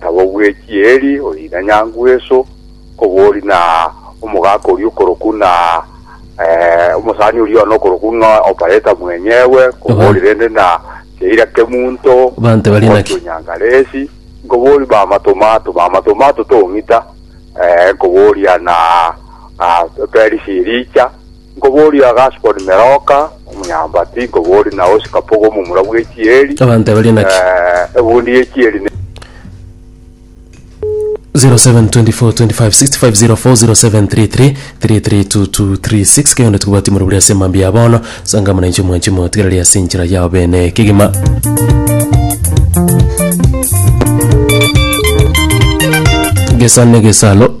Nabo bwechia Eli oina nyangu eso, kobori na omogaka oria okorokwa na omosani oria one okorokwa ng'a Opareta mwenyegwe, kobori rende na Sheira Kemunto, Banto bari omorwoti naki? o Nyangalesi, nkobori mama Tomato, mama Tomato tong'ita, nkoboria na Perisi Elicha, Nkoboria Gaspard Meroka, omonyaambati, nkoboria Naosi Kapogo, omomura bw'echieri. Abanto aba baria naki? Eh, ebundi y'echieri ne 07242565040733332236 kegende tokobwati more buri ase emambia ya bono sanga muna inche omwanchi motigereria ase enchera yao bene kegima gesane gesalo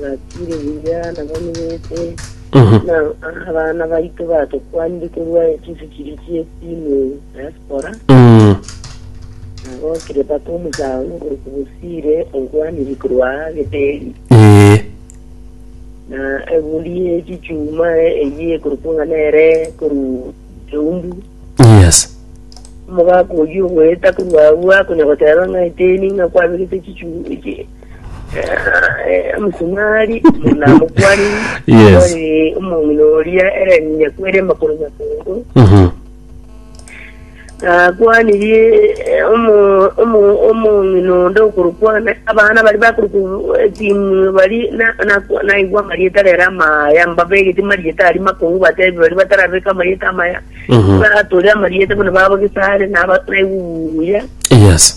Nakire buya nabo nibete, na abana baito batokwanire korwa echisi chiria chi'etimu ya Spora, Mm. nabo Kilepata omosaani ogoruka Bosire onkwanire korwa aa Beteli, Ee. na egori y'echichuma eyio ekorokwa ng'a nere korwa Eumbu. Yes. Omogaka oyio ogoeta korwa agwo akonya goteba ng'a eteni ng'a kwabegete echichu- echi- Omosunari omonamokwaniri Yes. ore omong'ina oria ere nyakwere makoro makongo Mhm. nakwanirie eh, omo- omo- omong'ina onde okorokwana abana bari bakorokwa etimu bari na- na- naigwa amarieta rero amaya mbabegeti marieta ari makongo batebi bari batarabeka amarieta amaya Mhm. batore amarieta bono baba gisare naba- naigwa obuya Yes.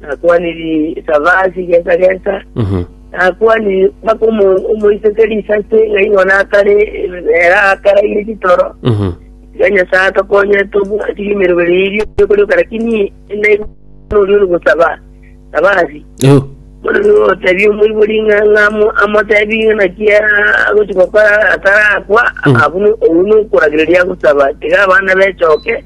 Nakwaniri Savasi gesa gesa, nakwaniri mpaka omoiseke risase, ng'a igo nakare ere akaraire chitoro, tiga Nyasae atokonye tobwati emeremo eria ekorioka, rakini naigwe noria ore gosaba Savasi. Bono nigo ogotebia omoibori ng'a ng'amo amotebi ng'a naki agochi gokora atarakwa, abune, oyio nokoragereria agosaba, tiga abana bechoke,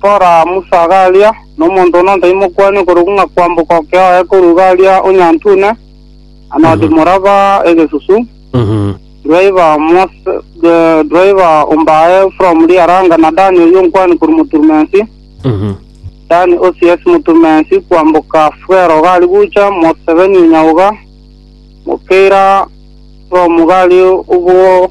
Kora Musa garia, na omonto one ontaimokwane okorokwa ng'a kwamboka oke oye korwa garia onyantune, anodi moraba egesusu, driver Mose, eh, driver ombae from riaranga, na Dani oyio nkwane korwa moturumensi, Dani Osias moturumensi, kwamboka Fwero gari gucha, Moseveni onyaoga, Mokeira from gari obwo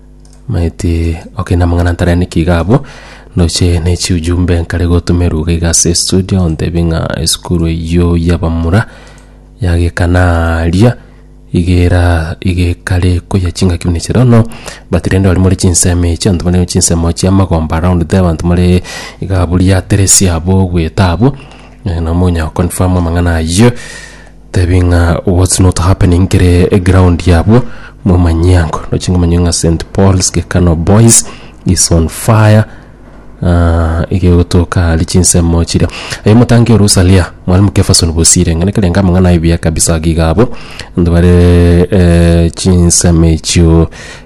Maeti okay na mang'ana ntare niki iga abwo ndoche ne chiujumbe nkare gotuma eruga iga ase studio ontebie ng'a esukuru eyio y'abamura yagekana aria igera igekare koyia chingaki buna echi erono but rende baria more chinsemo echi abanto bare chinsemo chia amagomba around there abanto more iga abwo riateresi abwo ogweta abwo eh, nabo monyara goconfirm amang'ana ayio Tebie ng'a what's not happening kere ground yabwo momanyie ango noche ngomanye ng'a St Paul's Gekano Boys is on fire Ah, iga egotoka ari chinsemo chiria aye motange orusa ria mwalimu Kefason Bosire ng'ana kerenga amang'ana aye buya kabisa giga abo ntibare eh, chinsemo echio